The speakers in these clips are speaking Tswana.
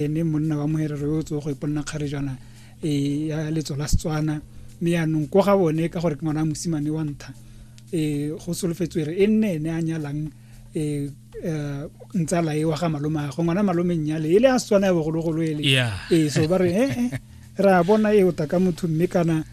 ene monna wa moherero yo o tsogo go iponna kgarejana e ya letso la setswana mme yaanong ko ga bone ka gore ke ngwana mosimane wa ntha um go solofetswe re e nne ene a nyalang um ntsala e wa ga malome go ngwana malome nnyale e le a setswana ya bogologolo ele ee so ba re ee ra bona e o taka motho mme kana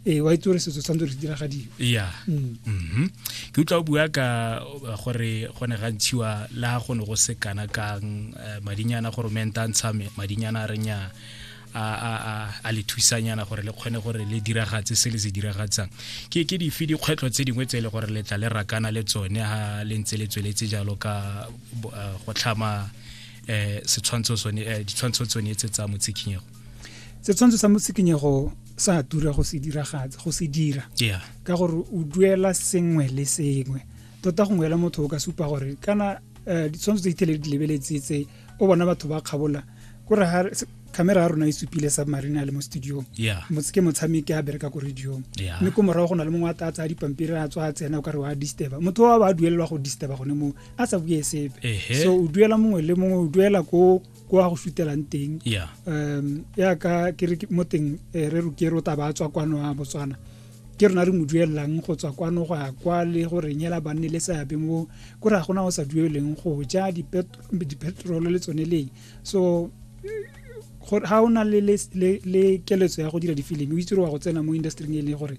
ee wa itse gore setso tshwanetse re se diragadiwe ya mm. mhm. ke utlwa o bua ka uh, gore go ne ga ntshiwa le ga go ne go se kana kang uh, madinyana gore menta ntsha madinyana a renya a le thusanyana gore le kgone gore le diragatse se le se diragatsang ke ke dife dikgwetlho tse dingwe tse e le gore le tla le rakana le tsone ga le ntse le tsweletse jalo ka uh, go tlhama um setshwantsho tsone ditshwantsho tsone tse tsa motshikhinyego setshwantsho sa motsikinyego sa tura go se diragatsa go se dira yeah. ka gore o duela sengwe le sengwe tota gongwe la motho o ka supa gore kana um ditshwantsho tse ithele di lebeletse tse o bona batho ba kgabola kore camera ya rona e supile submarine a le mo studiong yeah. ke motshameki a bereka ko radiong yeah. mme ko morago go na le mongwe a tla tsaya dipampiri a tswa a tsena o kare wa disturba motho wa ba a duelelwa go disturba gone moo a sa bue sepe so o duela mongwe le mongwe o duela ko ko a go sutelang teng yeah um ya ka ke re ke- mo teng eh, re roke ro taba a tswa kwano a botswana ke rona re mo duelelang go tswa kwano go ya kwa le go re nyela banne le seabe mo ko re ga gona o sa dueleng go ja dipet- dipetrolo le tsone leng so gore ga o na le, le, le, le keletso ya go dira difilimi o itse gore wa go tsena mo industry e leng gore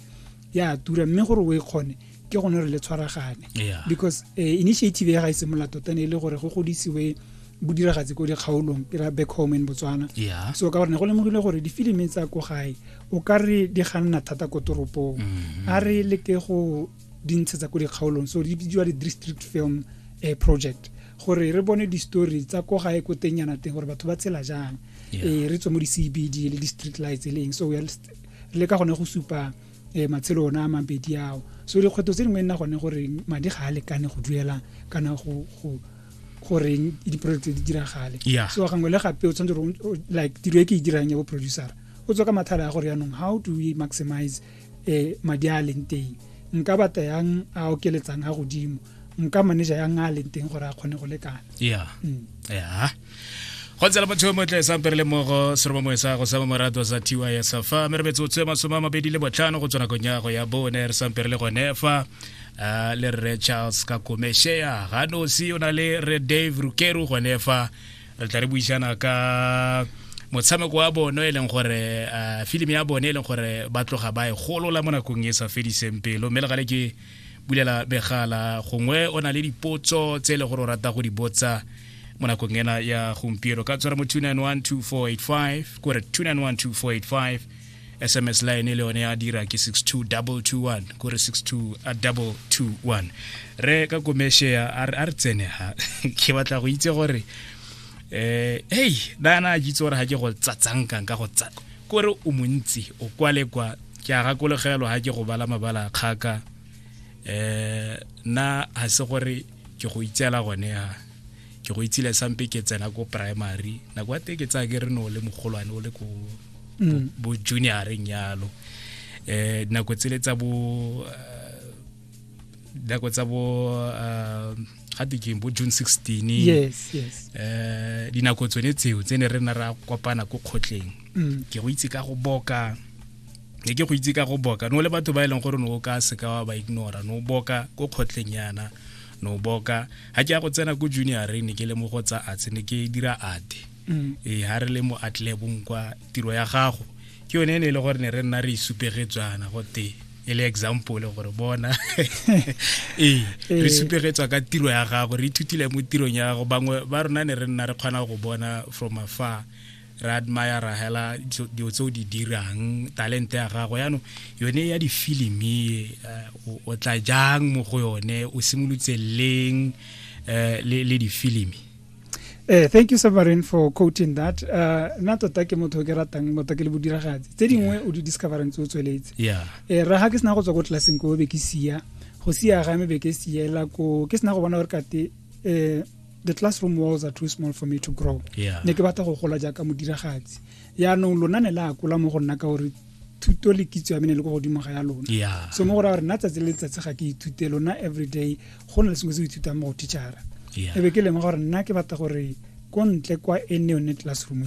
ya tura mme gore o e kgone ke gone re le tshwaragane because eh, initiative ya ga e simolola tota ne e le gore go godisiwe bodiragatse ko dikgaolong ke ra back home in botswana so ka gore ne go lemogile gore difilimi tsa ko gae o ka re di ganna thata ko toropong mm-hmm. a re leke go di ntshetsa ko dikgaolong so di bidiwa di-district film eh, project gore re bone di-story tsa ko gae ko teng yana teng gore batho ba tshela jang eh, re tswe mo di-cbd le di-street lights e leng so le ka gone go supa um matshelo ona a mabedi ao so dikgwetlho tse dingwe nna gone gore madi ga a lekane go duela kana go goreng di-project tse di diragale so gangwe le gape o tshwanetse gore like tiro e ke e dirang ya bo producer o tswa ka mathata a gore yaanong how do we maximize um madi a a leng teng nka batla yang a okeletsang a godimo nka manager ya nga leng teng gore a kgone go lekana ya mm. ya go tsela motho yo motle sampere le mogo seroba moe sa go sama morato sa tiwa ya safa mme re metsotso e masome a mabedi le botlhano go tswa nakong ya go ya bone re sampere le gone fa ah, le rre charles ka komeshea ga nosi o na le re dave rukeru gone fa re tla re buisana ka motshameko wa bone e leng gore uh, filimi ya bone e leng gore ba tloga ba e golola mo nakong e sa fediseng pelo mme le gale ke bulela begala gongwe o na le dipotso tse e le gore o rata go di botsa mo nakong ena ya gompieno ka tshwara mo 2912485 kore 2912485 sms line le yone ya dira ke 62221 kore 62221 re ka komeshe a re tsene ha ke batla go itse gore eh hey dana a jitse gore ha ke go tsatsankang ka go tsa kore o montsi o kwale kwa ke a gakologelwa ga ke go bala mabala a kgaka um nna ga se gore ke go itseela gone ya ke go itsile sampe ke tsena ko primary nako ya te ke tsaya ke re ne o le mogolwane o le ko mm. bo junioreng yalo um nako tsele tsa bo eh, dako tsa bo uh, ga tekeng bo june 16 yes, yes. Uh, dinako tsone tseo tse ne re na ra kopana ko kgotleng mm. ke go itse ka go boka ne ke go itse ka go boka no le batho ba e leng gore no o ka seka wa ba ignora no boka ko kgotleng yana no boka ga ke ya go tsena ko junior ne ke le mo go tsa arts ne ke dira ate mm. ee ha re le mo atlebong kwa tiro ya gago ke yone e ne e le gore ne re nna re isupegetswana e gote e le example gore bona ee re ee. supegetswa ka tiro ya gago re ithutile mo tirong ya gago bangwe ba rona ne re nna re kgona go bona from afar re admire ra hela dilo tse o di dirang talente ya gago yaanong yone ya difilimi eh, o tla jang mo go yone o simolotse leng eh, le difilimi Eh, thank you Severin for quoting that. Uh, nna tota ke motho ke ratang motho ke le bodiragatsi. Tse dingwe o di discoverang tse o tsweletse. Yeah. Eh, ra ha ke sena go tswa ko tlelaseng ko be ke sia. Go sia ga me be ke siela ko ke sena go bona gore kate eh the classroom walls are too small for me to grow. Yeah. Ne ke batla go gola jaaka modiragatsi. Yaanong lona ne la akola mo go nna ka gore thuto le kitso ya mene le ko godimo ga ya lona yeah. so mo go raya gore nna tsatsi le letsatsi ga ke ithute lona everyday go na le sengwe se o ithutang mo go teachara yeah. ebe ke lengwe gore nna ke batla gore ko ntle kwa e ne yone classroom ya